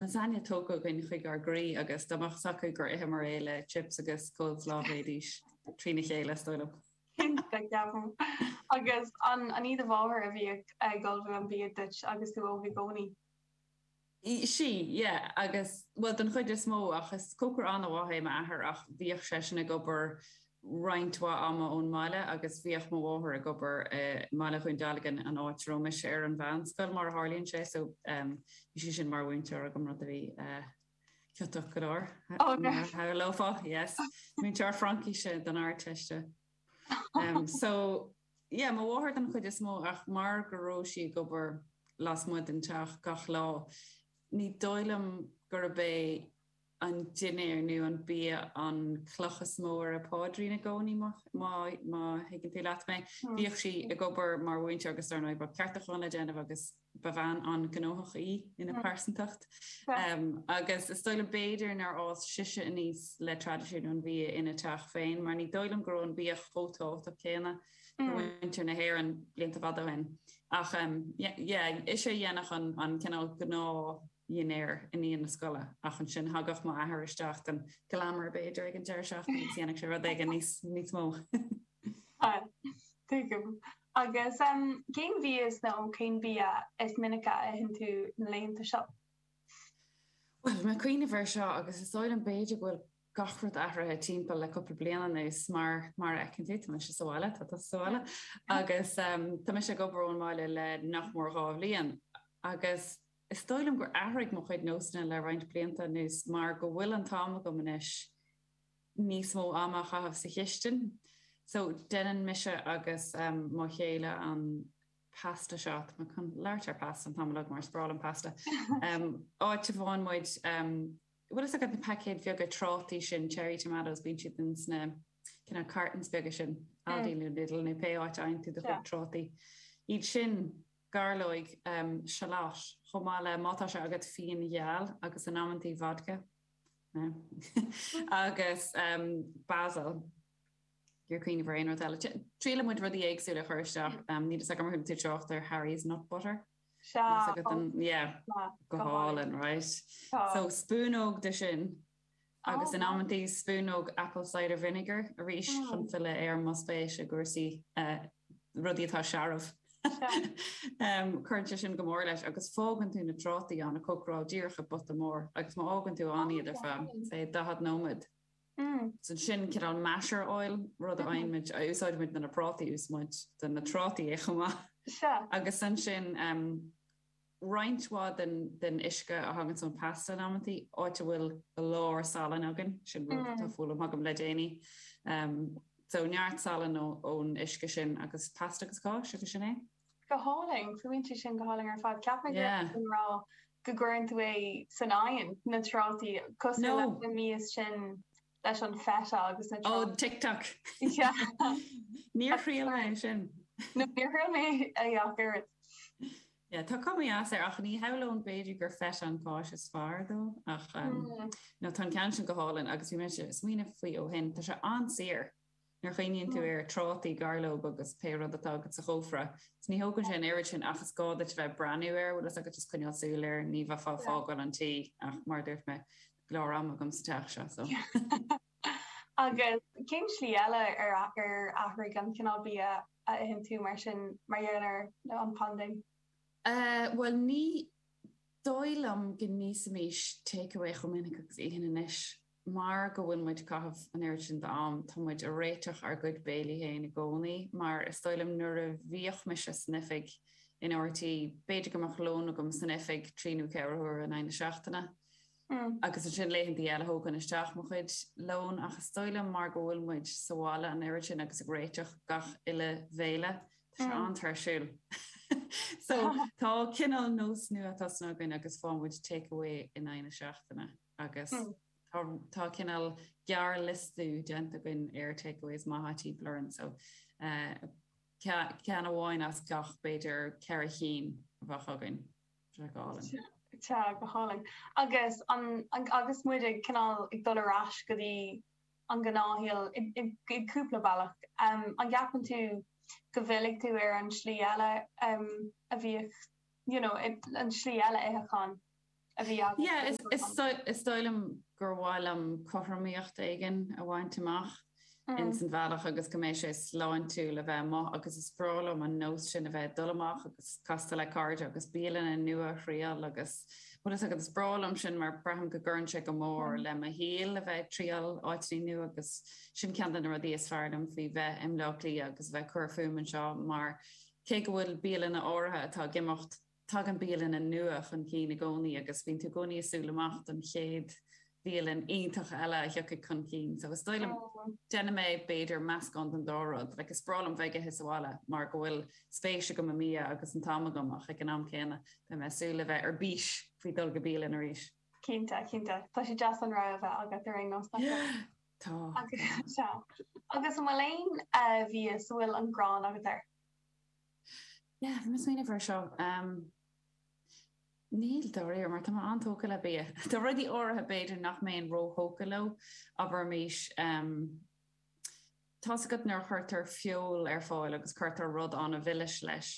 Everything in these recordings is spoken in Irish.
lasagne tógtha againn chuig ár gcroí agus dá mbeadh 's acu gur itheamar é le chips agus coleslaw bheidís trína chéile, is dóigh liom. Cinnte, ceapaim. Agus an í do mháthair a bhíodh ag ullmhú an bhia duit agus tú óg i gcónaí? Sea, yeah. Agus, bhuel, den chuid is mó ach is cócaire an-mhaith é m'athair ach bhíodh seisean ag obair roinnt mhaith ama ón mbaile agus bhíodh mo mháthair ag obair i mBaile Dhún Dealgan, an áit a raibh mise ar an mheánscoil, mar a tharlaíonn sé, so bhí sise mar mhúinteoir agam, rud a bhí ciotach go leor, mar a shamhlófá, yes, múinteoir Fraincíse don Ardteiste. So, yeah, mo mháthair den chuid is mó ach mar go raibh sí ag obair lasmuigh den teach gach lá, ní dóigh liom gurb é, an dinnéar nó an bia an cloch is mó ar a páidrín i gcónaí, má thuigeann tú leat mé. Bhíodh sí ag obair mar mhúinteoir agus, dar ndóigh, bhí ceartúchán le déanamh agus ba bhean an-ghnóthach í ina pearsantacht. Agus is dóigh liom, b'fhéidir, nár fhás sise aníos le traidisiún an bhia ina teach féin mar ní dóigh liom go raibh an bia chomh tábhachtach céanna do mhuintir na hÉireann blianta fada ó shin. Ach, yeah, ise a dhéanfadh an cineál gnáth. dhinnéar i ndiaidh na scoile ach ansin thagadh mo athair isteach don glamour b'fhéidir ag an deireadh seachtaine agus dhéanfadh sé rud éigin níos mó. Tuigim. Agus cén mhias nó cén bia is minice a itheann tú na laethanta seo? Bhuel, mé ag cuimhneamh air seo agus is dóigh liom b'fhéidir go bhfuil gach rud athraithe timpeall le cúpla bliain anuas mar a fheiceann tú, tá mise sa bhaile, tá tú sa bhaile agus tá mise ag obair ón mbaile le nach mór dhá bhliain agus Is dóigh liom gur athraigh mo chuid nósanna le roinnt blianta anuas mar go bhfuil an t-am agam anois níos mó ama a chaitheamh sa chistin so deineann mise agus mo chéile an pasta seo, tá mé chun labhairt ar pasta an t-am ar fad mar is breá liom pasta, áit a bhfaigheann muid, bhfuil fhios agat na paicéid bheaga trátaí sin, cherry tomatoes, bíonn siad in sna cineál cartons beaga sin, Aldi nó Lidl nó pé áit a fhaigheann tú do chuid trátaí, iad sin. gairleog, shallot, chomh maith le má tá sé agat fíon gheal agus in amanntaí vodka, agus basil, oregano nó aon rud eile. Triaileann muid rudaí éagsúla a chur isteach, níl fhios agam ar chuala tú trácht ar Harry's nut butter? Sea, sea. Go hálainn, right. So spúnóg de sin. agus in amanntaí spúnóg apple cider vinegar, arís chun filleadh ar mo spéis i gcúrsaí rudaí atá searbh. Cuireann sé sin go mór leis agus fágann tú na trátaí ann ag cócaráil díreach i bpota mór agus má fhágann tú ann iad ar feadh, say, 40 nóiméad, is ansin cineál masheráil, rud a fhaighimid, a úsáidimid do na prátaí, úsáideann muid do na trátaí é chomh maith, agus ansin, roinnt mhaith den uisce a thagann ón Pasta in amantaí, áit a bhfuil go leor salann againn, sin rud atá foghlaim agam le déanaí. So neart salainn ón uisce sin agus Pasta agus cáis, agus sin é. Go hálainn, fuaimníonn sin go hálainn ar fad. Cheap mé go raibh tú ag rá go gcuireann tú é san oigheann na trátaí, cosúil leis an mí is sinn leis an feta agus na trátaí. Oh, TikTok! Níor thriail mé é sin. No, níor thriail mé ach oiread. Yeah, tá cuma dheas air, ach ní shamhlóinn b'fhéidir gur feta an cháis is fearr dó, ach, no, tá an ceann sin go hálainn, agus bhí mé ag smaoineamh faoi ó shin, tá sé an-saor. Nuair a chuimhníonn tú ar trátaí, gairleog agus pé rud atá agat sa chófra, is ní thógann sé an oiread sin ach is gá duit a bheith ag breathnú air, bhfuil fhios agat, is coinneáil súil air, ní bheifeá ag fágáil an tí ach, mar a dúirt mé, go leor ama agam sa teach seo, so. Agus cén slí eile ar ar athraigh an cineál bia a itheann tú mar sin mar gheall ar an bpaindéim? Bhuel ní dóigh liom go n-íosaimis take away chomh minic agus a itheann anois. mar go bhfuil muid ag caitheamh an oiread sin d'am, tá muid ag réiteach ár gcuid béilí féin i gcónaí, mar is dóigh liom nuair a bhíodh muid san oifig in RTÉ, b'fhéidir go mbeadh lón agam san oifig trí nó ceithre huaire in aghaidh na seachtaine, agus ansin laethantaí eile thógfainn isteach mo chuid lóin, ach is dóigh liom mar go bhfuil muid sa bhaile an oiread sin agus ag réiteach gach uile bhéile, tá sé an-tuirsiúil. So, tá cineál nós nua tosnaithe againn agus faigheann muid take away in aghaidh na seachtaine. agus tá cineál gearrliosta déanta againn ar takeaways maithe timpeall orainn, so ceann amháin as gach b'fhéidir ceithre chinn a bheadh againn, go hálainn. Sea, go hálainn. Agus agus muid ag cineál ag dul ar ais go dtí an gnáthshaol, i gcúpla bealach, an gceapann tú go bhfillfidh tú ar an tslí eile a bhíodh, you know, an tslí eile itheacháin? a bhí agat. Yeah, is dóigh liom gur mhaith liom cothromaíocht éigin a bhaint amach ins an bhealach agus go mbeidh sé sláintiúil a bheith amuigh agus is breá liom an nós sin a bheith ag dul amach agus castáil le cairde agus bialanna nua a thriáil agus bhfuil fhios agat, is breá liom sin mar braithim go gcuireann sé go mór le mo shaol a bheith ag triáil áiteannaí nua agus sin ceann de na rudaí is fearr liom faoi bheith i mBleá Cliath agus bheith ag cur fúm anseo mar cé go bhfuil bialanna áirithe atá ag imeacht Tagann bialanna nua chun cinn i gcónaí agus bíonn tú i gcónaí ag súil amach don chéad bhialann iontach eile a thiocfaidh chun cinn. So is dóigh liom, déanfaidh mé, b'fhéidir, meascán den dá rud. Like, is breá liom bheith ag ithe sa bhaile mar go bhfuil spéis agam i mbia agus an t-am agam ach ag an am céanna, beidh mé ag súil le bheith ar bís faoi dhul go bialann arís. Cinnte, cinnte. Tá sé deas an rogha a bheith agat ar aon nós, nach bhfuil? Tá. Agus, sea. Agus an bhfuil aon bhia a bhfuil an ghráin agat air? Yeah, bhí mé ag smaoineamh air seo. Umm, níl, dáiríre, mar tá mé an-tógtha le bia. Tá rudaí áirithe b'fhéidir nach mbeinn róthógtha leo, abraimis, umm, tá's agat nuair a chuirtear feoil ar fáil agus cuirtear rud ana-mhilis leis,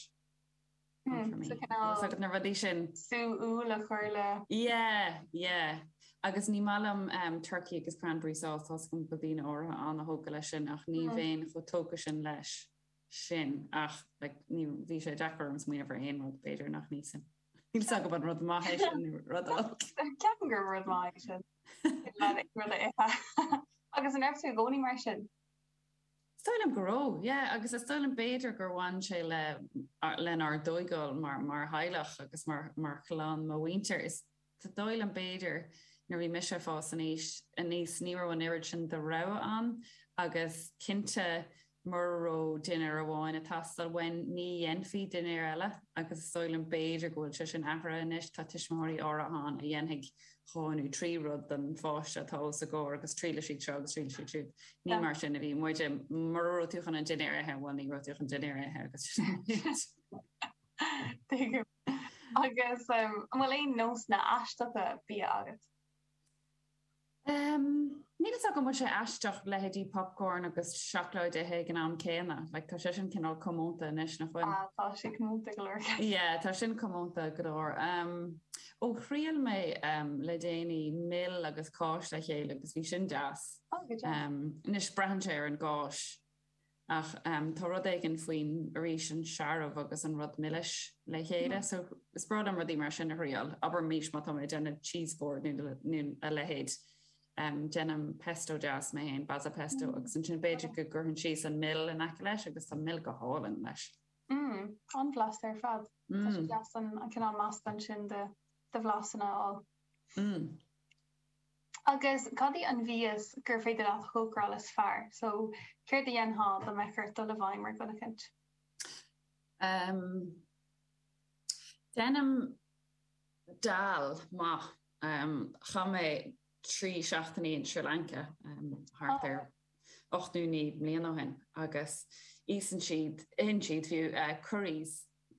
umm, for me. Umm, so cineál. Tá's agat na rudaí sin. sú úll a chur le. Yeah, yeah. Agus ní maith liom umm turkey agus cranberry sauce, tá's agam go bhfuil daoine áirithe an-thógtha leis sin ach ní bheinn chomh tógtha sin leis. sin ach like bhí sé deacair orm smaoineamh ar aon rud b'fhéidir nach n-íosfainn níl a fhios agam an rud maith é sin nó rud olc. Ceapaim gur rud maith é sin go leor rudaí a ithe agus an raibh tú i gcónaí mar sin? Is dóigh liom go raibh yeah agus is dóigh liom b'fhéidir gur bhain sé le lenár dtógáil mar mar theaghlach agus mar mar chlann mo mhuintir is Is dóigh liom, b'fhéidir, nuair a bhí mise ag fás aníos, ní raibh an oiread sin de rogha ann agus cinnte mura raibh dinnéar amháin ag teastáil uainn, ní dhéanfaí dinnéar eile agus is dóigh liom, b'fhéidir, go bhfuil sé sin athraithe anois. Tá tuismitheoirí áirithe ann a dhéanfaidh dhó nó trí rud don pháiste atá os a gcomhair agus triailfidh siad seo agus triailfidh siad siúd. Ní mar sin a bhí muide. Mura raibh tú chun an dinnéar a ithe, bhuel, ní raibh tú chun dinnéar a ithe agus sin é. Agus an bhfuil aon nósanna aisteacha bia agat? Níl a fhios agam an bhfuil sé aisteach leithéidí popcorn agus seacláid a ithe ag an am céanna. Like tá sé sin cineál comónta anois nach bhfuil? Ah tá sé comónta go leor ceapaim. Yeah tá sin comónta go leor. Ó thriail mé le déanaí mil agus cáis le chéile agus bhí sin deas. Oh go deas. Anois braitheann sé ar an gcáis. ach tá rud éigin faoin, arís, an searbh agus an rud milis le chéile. So, is breá liom rudaí mar sin a thriáil. Abraimis má tá mé ag déanamh cheese board nó a leithéid, déanaim pesto deas mé féin, basil pesto, agus ansin b'fhéidir go gcuirfinn síos an mil in aice leis agus tá mil go hálainn leis. Mm, an-bhlasta ar fad. Tá sé deas an cineál meascán sin de bhlasanna a fháil. Mm. Agus cad í an mhias gur féidir leat a chócaráil is fearr? So, céard a dhéanfá dá mbeadh ort dul i bhfeidhm ar dhuine éicint? Ahem. Déanaim dal maith. Chaith mé trí seachtainí in Sri Lanka thart ar ocht nó naoi mbliana ó shin agus íosann siad, itheann siad fiú, curries.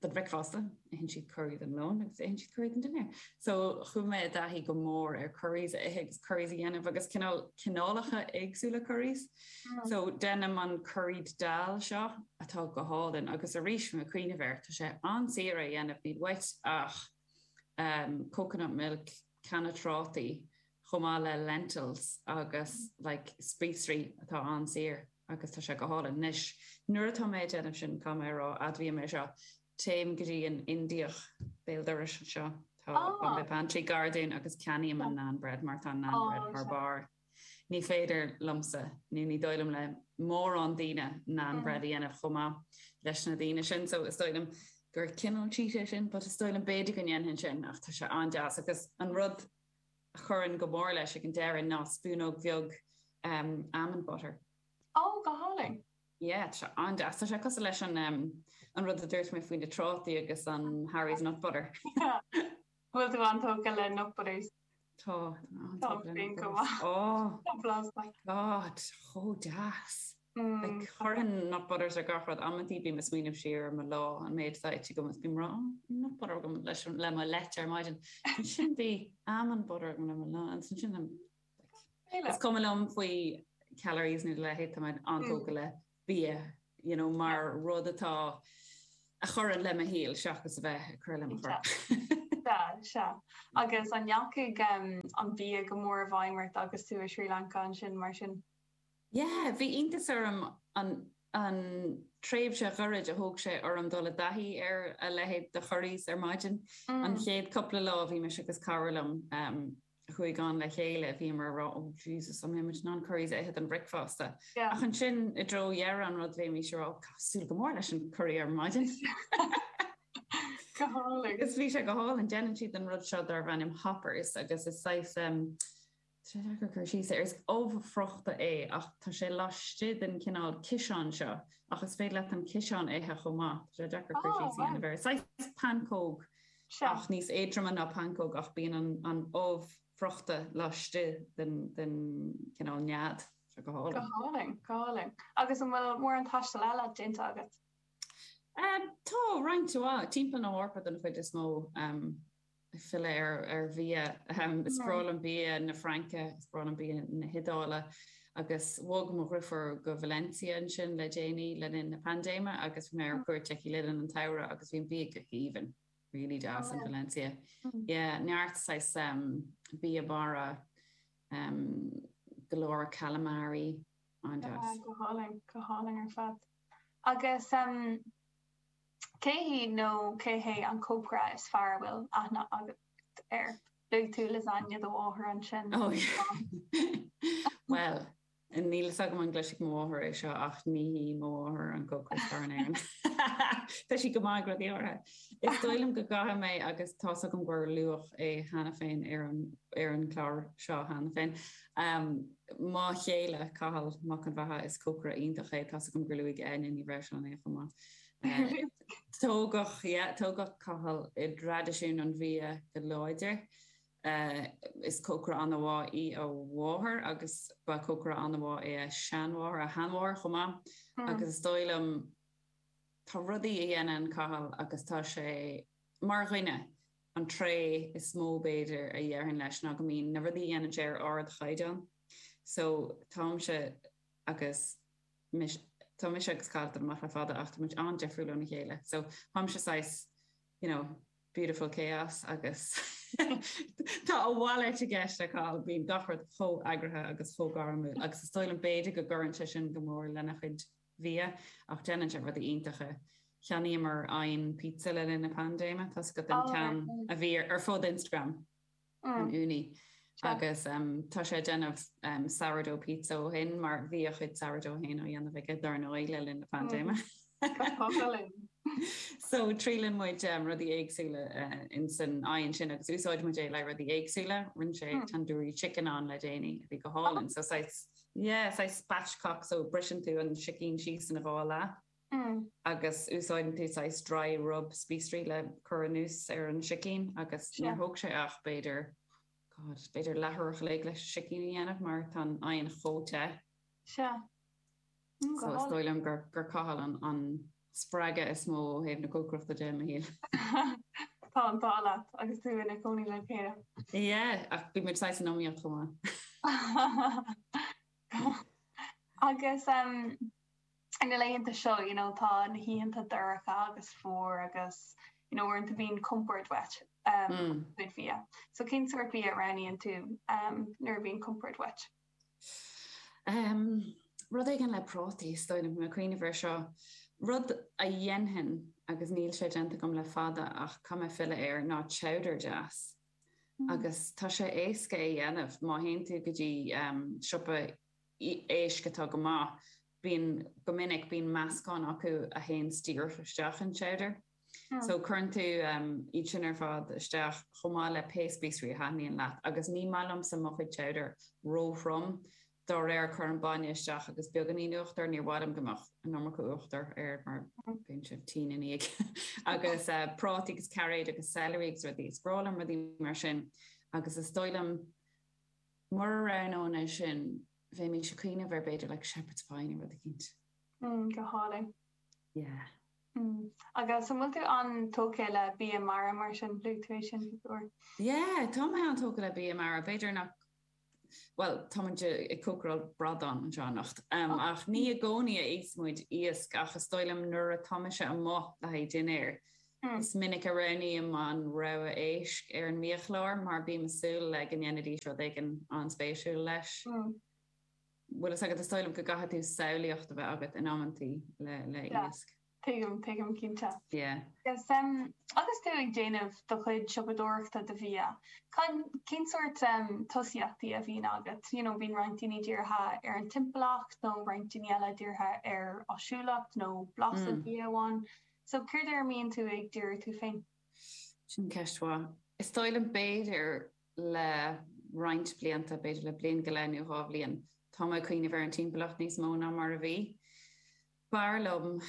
don bhricfeasta, itheann siad curaí don lón agus itheann siad curaí don dinnéar. So chuaigh mé i dtaithí go mór ar curries a ithe agus curries a dhéanamh agus cineál cineálacha éagsúla curries. So déanaim an curried dal seo atá go hálainn agus arís chun cuimhneamh air, tá sé an-saor é a dhéanamh, níl uait ach coconut milk, canna trátaí, chomh maith le lentils agus like spíosraí atá an-saor agus tá sé go hálainn. Anois, nuair atá mé ag déanamh sin, caithfidh mé a rá, admhaím é seo, téim go dtí an Indiach béal dorais anseo, tá Bombay Pantry gar dúinn agus ceannaím an naan bread mar tá an naan bread thar barr. Ní féidir liomsa, nó ní dóigh liom le mórán daoine, naan bread a dhéanamh chomh maith leis na daoine sin so is dóigh liom gur cineál cheat é sin but is dóigh liom b'fhéidir go ndéanfainn sin ach tá sé an-deas agus an rud a chuireann go mór leis ag an deireadh ná spúnóg bheag almond butter. Ó, go hálainn. Yeah, tá sé an-deas. Tá sé cosúil leis an an rud a dúirt mé faoi na trátaí agus an Harry's nut butter. Bhfuil tú an-tógtha le nut butters? Tá. Tá an fíon go maith. Ó! Tá blas maith. God, chomh deas. Like, chuirfinn nut butters ar gach rud. Amantaí bím ag smaoineamh siar ar mo lá, an méid atá ite agam is bím ag rá, oh, nut butter agam leis an, le mo leite ar maidin. Ansin bhí almond butter agam le mo lunch, ansin sin le, like, is cuma liom faoi calories nó a leithéid, tá mé an-tógtha le. bia you know mar rud atá a chuireann le mo shaol seachas a bheith ag cur le mo chorp. Sea, sea. Agus an ndeachaigh an bia go mór i bhfeidhm ort agus tú i Srí Lanca ansin mar sin? Yeah, bhí iontas orm an an tréimhse ghairid a thóg sé orm dul i dtaithí ar a leithéid de curries ar maidin. An chéad cúpla lá bhí mise agus cara liom, a chuaigh ann le chéile, bhíomar ag rá, 'Ó, Jesus, an mbeidh muid in ann curries a ithe don bhricfeasta? Ach ansin, i dtreo dheireadh an rud, bhímis ag rá, 'Tá súil go mór leis an curry ar maidin! Go hálainn! Agus bhí sé go hálainn. Déanann siad an rud seo darbh ainm hoppers agus is saghas, tá sé deacair cur síos air, is ubh fhriochta é ach tá sé laistigh den chineál ciseán seo ach is féidir leat an ciseán a ithe chomh maith, tá sé deacair cur síos a dhéanamh air. Is saghas pancóg. ach níos éadroime ná pancóg, ach bíonn an ubh fhriochta laistigh den chineál nead seo go hálainn. Go hálainn, go hálainn. Agus an bhfuil mórán taistil eile déanta agat? Tá, roinnt mhaith. Timpeall na hEorpa den chuid is mó, ag filleadh ar bhia. Is breá liom bia na Fraince, is breá liom bia na hIodáile. agus bhog mo dheirfiúr go Valencia ansin le déanaí le linn na paindéime agus bhí mé ar cuairt aici le linn an tsamhraidh agus bhí an bia go haoibhinn, really deas in Valencia. Yeah, neart saghas um, bia mara, um, go leor calamari, an-deas. Go hálainn, go hálainn ar fad. Agus um, cé hí nó cé hé an cócaire is fearr a bhfuil aithne agat air? Beidh tusa ag lasagne do mháthair ansin, Tom. Bhuel, níl a fhios agam an gcloisfidh mo mháthair é seo ach ní hí mo mháthair an cócaire is fearr in Éirinn. Tá sí go maith ag rudaí áirithe. Is dóigh liom go gcaithfidh mé agus tá's agam gur luadh é cheana féin ar an gclár seo cheana féin. Mo chéile, Cathal Mac an Bheatha, is cócaire iontach é, tá's agam gur luaigh Áine Ní Bhreisleáin é chomh maith. Tógadh, yeah, tógadh Cathal i dtraidisiún an bhia go láidir. Is cócaire an-mhaith í a mháthair agus ba chócaire an-mhaith í a sheanmháthair, a sheanmháthair chomh maith agus is dóigh liom tá rudaí a dhéanann Cathal agus tá sé, mar dhuine, an tréith is mó b'fhéidir a déarfainn leis ná go mbíonn na rudaí a dhéanann sé ar ardchaighdeán so táimse agus. tá mise agus Cathal ag dul amach le fada ach tá muid an-difriúil óna chéile so táimse saghas you know beautiful chaos agus tá a mhalairt i gceist le Cathal, bíonn gach rud chomh eagraithe agus chomh gairmiúil agus is dóigh liom b'fhéidir go gcuireann sé sin go mór lena chuid bhia ach déanann sé rudaí iontacha. Cheannaíomar oigheann pizza le linn na paindéime, tá's agat an ceann a bhí ar fud Instagram. an Ooni. Agus tá sé ag déanamh sourdough pizza ó shin, mar bhí a chuid sourdough féin á dhéanamh aige, dar ndóigh, le linn na paindéime. So triaileann muid rudaí éagsúla in san oigheann sin agus úsáideann muid é le rudaí éagsúla. Rinne sé tandoori chicken ann le déanaí a bhí go hálainn. So saghas, yeah, saghas spatchcock, so briseann tú an sicín síos ina dhá leath. Hm. Agus úsáideann tú saghas dry rub spíosraí le cur anuas ar an sicín agus níor thóg sé ach b'fhéidir, God, b'fhéidir leathuair an chloig leis an sicín a dhéanamh mar tá an t-oigheann chomh te. Sea. Hm, go hálainn. So is dóigh liom gur Cathal an spreagadh is mó ó thaobh na cócaireachta de i mo shaol. Tá an t-ádh leat agus tú i do chónaí lena leithéid. Yeah, ach bímid saghas in iomaíocht chomh maith. Agus, Na laethanta seo, you know, tá na hoícheanta dorcha agus fuar agus, you know, uaireanta bíonn compord uait i do chuid bia. So cén sórt bia a roghnaíonn tú um, nuair a bhíonn compoird wet? Um, rud éigin le prátaí is dóigh liom ag cuimhneamh air seo. Rud a dhéanfainn agus níl sé déanta agam le fada ach táim ag filleadh air ná chowder deas. Mm. agus tá sé éasca é a dhéanamh má théann tú go dtí um, siopa éisc atá go maith, bíonn, go minic, bíonn meascán acu a théanns díreach isteach i chowder. So cuireann tú iad sin ar fad isteach chomh maith le pé spíosraí a thaitníonn leat agus ní maith liomsa mo chuid chowder ró-throm, dá réir cuirim bainne isteach agus beagáinín uachtair, níor mhaith liom go mbeadh an iomarca uachtair air mar bíonn sibh tinn ina dhiaidh. Agus prátaí agus cairéid agus celery agus rudaí, is breá liom rudaí mar sin agus is dóigh liom, Mura roghnóinn é sin, bheinnse a' cuimhneamh ar b'fhéidir like Shepherd's Pie nó rud eicínt. Mm, go hálainn. Yeah. Mm. Agus an bhfuil tú an-tógtha le bia mara mar sin, luaigh tú é sin cúpla uair? Yeah, tá mé an-tógtha le bia mara, b'fhéidir nach, bhuel, tá muid ag cócaráil bradán anseo anocht, um, oh. ach ní i gcónaí a itheas muid iasc ach is dóigh liom nuair a tá mise amuigh le haghaidh dinnéir, Is minic a roghnaím an rogha éisc ar an mbiachlár mar bím ag súil le go ndéanfaidís rud éigin an-spéisiúil leis. Bhfuil fhios agat, is dóigh liom go gcaithfidh tú samhlaíocht a bheith agat in amantaí le héisc. Tuigim, tuigim, cinnte. Agus tú ag déanamh do chuid siopadóireachta do bhia, cén sórt tosaíochtaí a bhíonn agat? You know, bíonn roinnt daoine dírithe ar an timpeallacht nó roinnt daoine eile dírithe ar áisiúlacht nó blas an bhia amháin. So, céard air a mbíonn tú ag díriú tú féin? Sin ceist mhaith. Is dóigh liom b'fhéidir le roinnt blianta, b'fhéidir le bliain go leith nó dhá bhliain, tá mé ag cuimhneamh ar an timpeallacht níos mó ná mar a bhí. B'fhearr liom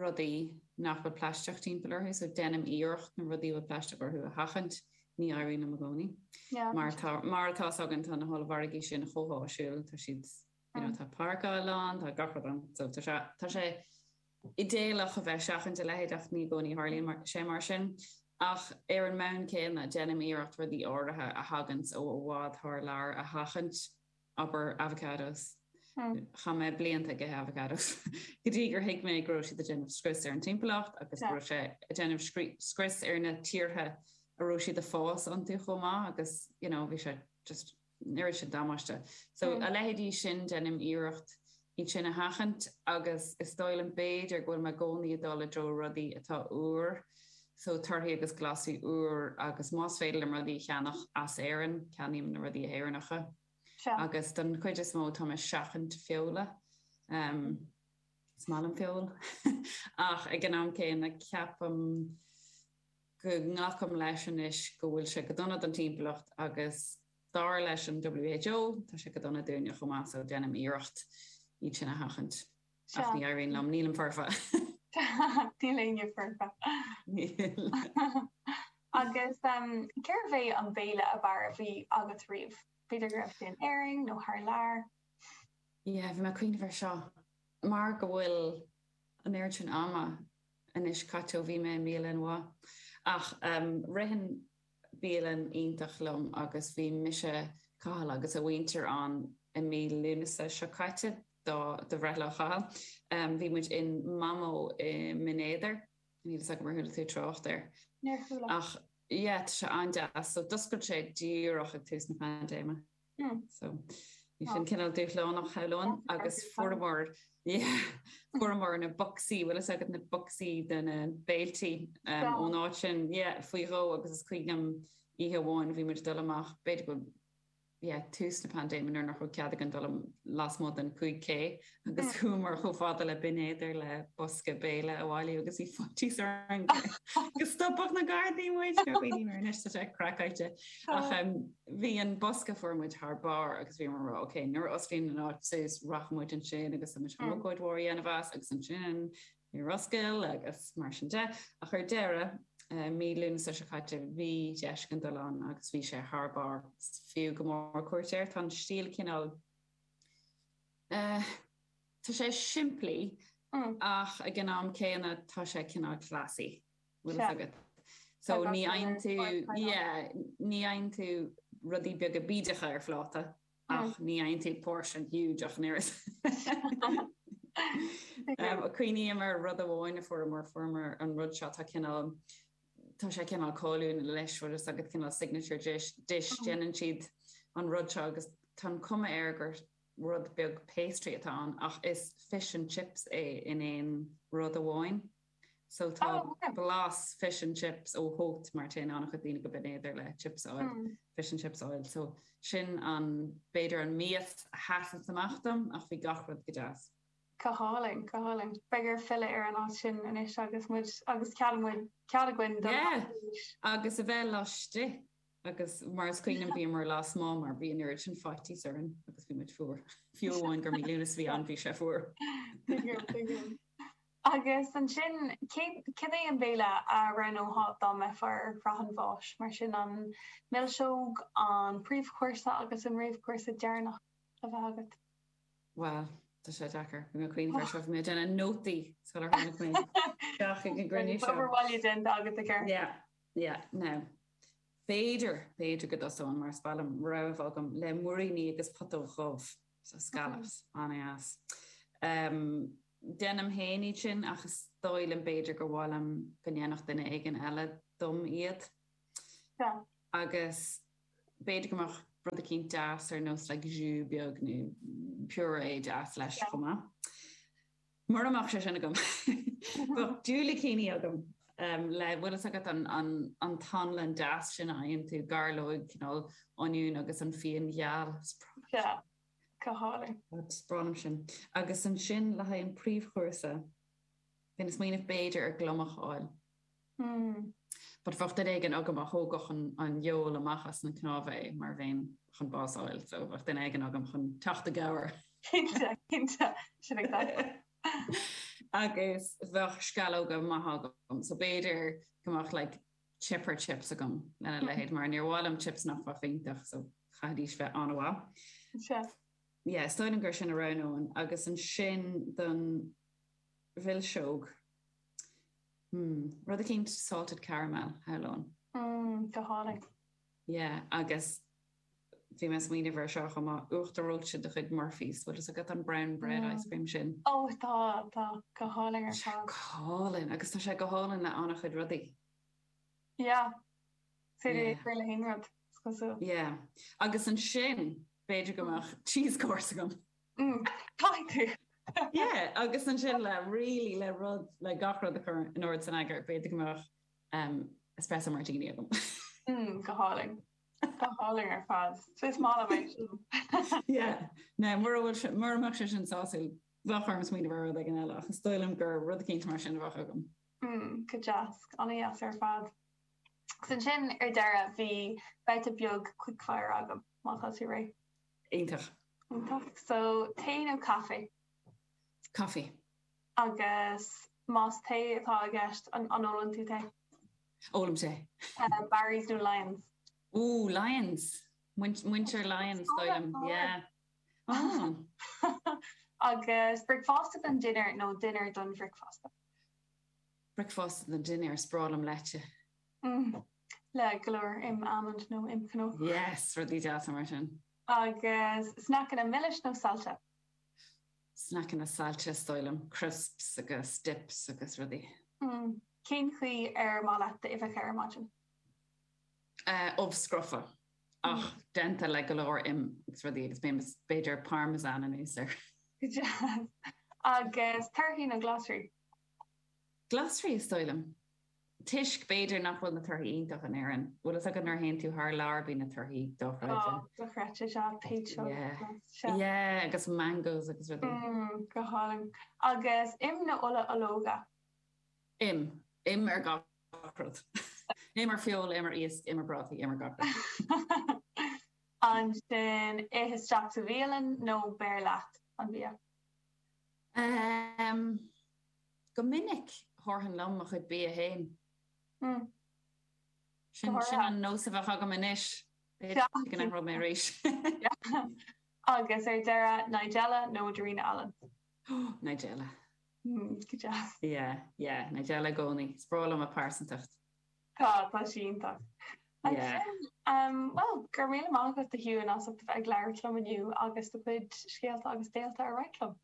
rudaí nach bhfuil plaisteach timpeall orthu, so deinim iarracht na rudaí a bhfuil plaisteach orthu a sheachaint, ní éiríonn liom i gcónaí. Mar atá, mar atá a fhios againn, tá na hollmhargaí sin chomh háisiúil, tá siad, you know, tá páirceáil ann, tá gach rud ann, so tá sé, tá sé, idéalach a bheith seachaint a leithéid ach ní i gcónaí a tharlaíonn sé mar sin. Ach ar an mbonn céanna, déanaim iarracht rudaí áirithe a thaganns ó i bhfad thar lear a sheachaint, abair avocados. Chaith mé blianta ag ithe avocados go dtí gur thuig mé go raibh siad ag déanamh scrios ar an timpeallacht agus go raibh sé ag déanamh scrios ar na tíortha a raibh siad ag fás iontu chomh maith agus, you know, bhí sé just. oiread sin damáiste. So, a leithéidí sin, deinim iarracht iad sin a sheachaint agus is dóigh liom b'fhéidir go bhfuil mé i gcónaí ag dul i dtreo rudaí atá úr, so torthaí agus glasraí úr agus más féidir liom rudaí a cheannach as Éirinn, ceannaím na rudaí Éireannacha. Sea. Agus don chuid is mó táim ag seachaint feola. Is maith liom feoil ach ag an am céanna ceapaim. go nglacaim leis anois go bhfuil sé go dona don timpeallacht agus dar leis an WHO tá sé go dona dúinne chomh maith so déanaim iarracht iad sin a sheachaint ach ní éiríonn liom, nílim foirfe! Níl éinne foirfe. Níl. Agus cérbh é an béile ab fhearr a bhí agat riamh? B'fhéidir go raibh sé in Éirinn nó thar lear? Yeah, bhí mé ag cuimhneamh air seo. Mar go bhfuil an oiread sin ama anois caite ó bhí mé i mbialann mhaith, ach ritheann bialann iontach liom agus bhí mise, Cathal agus a mhuintir ann i mí Lúnasa seo caite do bhreithlá Chathail. Bhí muid in Mamó i mBinn Éadair, níl fhios agam ar chuala tú trácht air. Níor chuala. Ach yeah, tá sé an-deas. So d'oscail sé díreach ag tús na paindéime. So, bhí sin cineál dúshlánach shamhlóinn agus fuaireamar, yeah, fuaireamar na bocsaí, bhfuil fhios agat na bocsaí de na béilí ón áit sin, yeah, faoi dhó agus is cuimhin liom oíche amháin bhí muid ag dul amach, b'fhéidir go, yeah, tús na paindéime nuair nach raibh cead againn dul lasmuigh den 5K agus chuamar chomh fada le Binn Éadair le bosca béile a bhailiú agus bhí faitíos ár gcroí go stopfadh na Gardaí muid, go raibh daoine anois sa tech craiceáilte ach bhí an bosca a fuair muid thar barr agus bhíomar ag rá ok nuair a osclaíonn an áit suas rachaidh muid ansin agus tá muid chun ócáid mhór a dhéanamh as agus ansin níor oscail agus mar sin de ach ar deireadh mí Lúnasa seo caite bhí deis againn dul ann agus bhí sé thar barr fiú go mór cuairt air tá an stíl cineál Tá sé simplí ach ag an am céanna tá sé cineál classy, bhfuil fhios agat. So ní fhaigheann tú, yeah, ní fhaigheann tú rudaí beaga bídeacha ar phláta ach ní fhaigheann tú portion huge ach an oiread. Is cuimhin liom rud amháin a fuaireamar, fuaireamar an rud seo, tá cineál, tá sé cineál cáiliúil leis, bhfuil fhios agat, cineál signature dish, déanann siad an rud seo agus tá an cuma air gur, rud beag pastry atá ann ach is fish and chips é in aon rud amháin. So tá Oh, ok. blas fish and chips uaidh, mar téann an-chuid daoine go Binn Éadair le chips a fháil, Mm. fish and chips a fháil. So sin an, b'fhéidir an mias a sheas amach dom ach bhí gach rud go deas. Go hálainn, go hálainn. Beifear ag filleadh ar an áit sin anois agus muid, agus cead muid, cead againn dul Yeah! áit arís. Agus a bheith laistigh Agus mar is cuimhin liom bhíomar lasmuigh mar bhí an oiread sin faitíos orainn agus bhí muid fuar. Fiú amháin gur mí Lúnasa a bhí ann bhí sé fuar. Agus ansin cad é an béile a roghnófá dá mbeifeá ar shraith an bháis? Mar sin an milseog, an príomhchúrsa agus an réamhchúrsa deireanach a bheith agat. Bhuel, tá sé deacair. Bhí mé ag cuimhneamh faoi seo, bhí mé ag déanamh nótaí sular tháinig mé isteach ag an gcruinniú seo. Bhí obair bhaile déanta agat, a Ger. Yeah, yeah, no. B'fhéidir, b'fhéidir go dtosóinn, mar is breá liom rogha a bheith agam, le muiríní agus putóg dhubh, so scallops, an-deas. Déanaim féin iad sin ach is dóigh liom b'fhéidir gur mhaith liom go ndéanfadh duine éigin eile dom iad. Agus b'fhéidir go mbeadh rud eicínt deas ar nós like jus beag nó purée deas leis chomh maith. Mura mbeadh sé sin agam, bheadh diúilicíní agam le bhfuil fhios agat an t-anlann deas sin a fhaigheann tú, gairleoig, cineál oinniúin agus an fíon gheal, is breá liom sin. Sea, go hálainn. Is breá liom sin. Agus ansin le haghaidh an príomhchúrsa, bhí mé ag smaoineamh b'fhéidir ar gliomach a fháil. But bheadh duine éigin agam a thógfadh an fheoil amach as na cnámha, é mar bheinn chun bás a fháil. So, bheadh duine éigin agam chun teacht i gcabhair. Cinnte, cinnte, sin é atá. Agus bheadh sceallóga maithe agam. So, b'fhéidir go mbeadh like chipper chips agam, lena leithéid, mar níor mhaith liom chips nach mbeadh iontach, so chaithfidís bheith an-mhaith. Yeah, is dóigh liom gur sin a roghnóinn. Agus ansin don mhilseog. mm rud eicínt salted caramel is dóigh liom mm go hálainn. yeah agus bhí mé ag smaoineamh air seo chomh maith, uachtar reoite de chuid Murphy's, bhfuil fhios agat an brown bread mm ice cream sin? oh tá tá, go hálainn ar fad. go hálainn agus tá sé go hálainn le an-chuid rudaí. yeah féidir é a chur le haon rud is cosúil. yeah agus ansin b'fhéidir go mm mbeadh cheese course agam. Yeah, agus ansin le really le rud le gach rud a chur in ord is in eagar, b'fhéidir go mbeadh em espresso martini agam. Mm, go hálainn. Go hálainn ar fad. So is maith liom é sin. Yeah, now mura bhfuil sé mura mbeadh sé sin sásúil, bheadh orm smaoineamh ar rud éigin eile ach is dóigh liom gur rud eicínt mar sin a bheadh agam. Mm, go deas, an-dheas ar fad. Agus ansin ar deireadh beidh babhta beag quickfire agam, má tá tú réidh. Iontach. Iontach. So, tae nó caife? Caife. Agus más tae atá i gceist, an ólann tú tae? Ólaim tae. Barry's nó Lyons? Ooh, Lyons. Muintir Lyons, d'fhoghlaim. Agus bricfeasta don dinnéar nó dinnéar don bhricfeasta? Bricfeasta don dinnéar, is breá liom leite. mm, le go leor im almond nó im cnó. Yes, rudaí deasa mar sin. Agus sneaiceanna milis nó saillte? Sneaiceanna saillte is dóigh liom, crisps agus dips agus rudaí. mm, cén chaoi ar mhaith leat d'uibheacha ar maidin? Eh, ubh scrofa, ach déanta le go leor im agus rudaí agus beidh b'fhéidir parmesan anuas air. Go deas. Agus torthaí nó glasraí? Glasraí is dóigh liom. toisc, b'fhéidir, nach bhfuil na torthaí iontach in Éirinn. Bhfuil a fhios agat nuair a théann tú thar lear bíonn na torthaí dochreidte. Ó, dochreidte, seo, peach. Yeah, agus mangoes agus rudaí. Mm, go hálainn. Agus im nó ola olóige? Im. Im ar gach rud. Im ar feoil, im ar iasc, im ar prátaí, im ar gach rud. Ansin, ith isteach sa bhialann nó beir leat an bia? Em, Go minic, thabharfainn liom mo chuid bia féin. Sin an nós a bheadh agam anois. B'fhéidir go n-athródh mé arís. Agus ar deireadh, Nigella nó Darina Allen? Nigella. Go deas. Yeah, yeah, Nigella i gcónaí. Is breá liom a pearsantacht. Tá, tá sí iontach. Ansin, bhuel, go raibh míle maith agat, a Shiúin, as ucht a bheith ag labhairt liom inniu agus do chuid scéalta agus d'eolas a roinnt liom.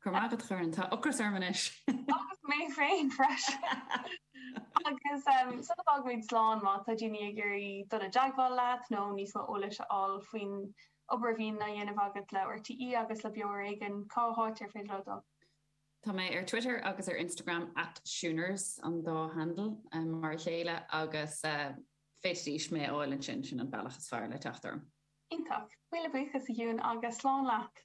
Go raibh maith agat, a Dhoireann. Tá ocras orm anois! Agus mé féin freisin! Agus sula bhfágaimid slán, má tá daoine ag iarraidh dul i dteagmháil leat nó níos mó eolais a fháil faoin obair a bhíonn á dhéanamh agat le RTÉ agus le Beo Ar Éigean, cá háit ar féidir leo dul? Tá mé ar Twitter agus ar Instagram, at Siuners an dá handle, mar a chéile, agus féadfaidh siad mé a fháil ansin, sin an bealach is fearr le teacht orm. Iontach! Míle buíochas, a Shiún, agus slán leat!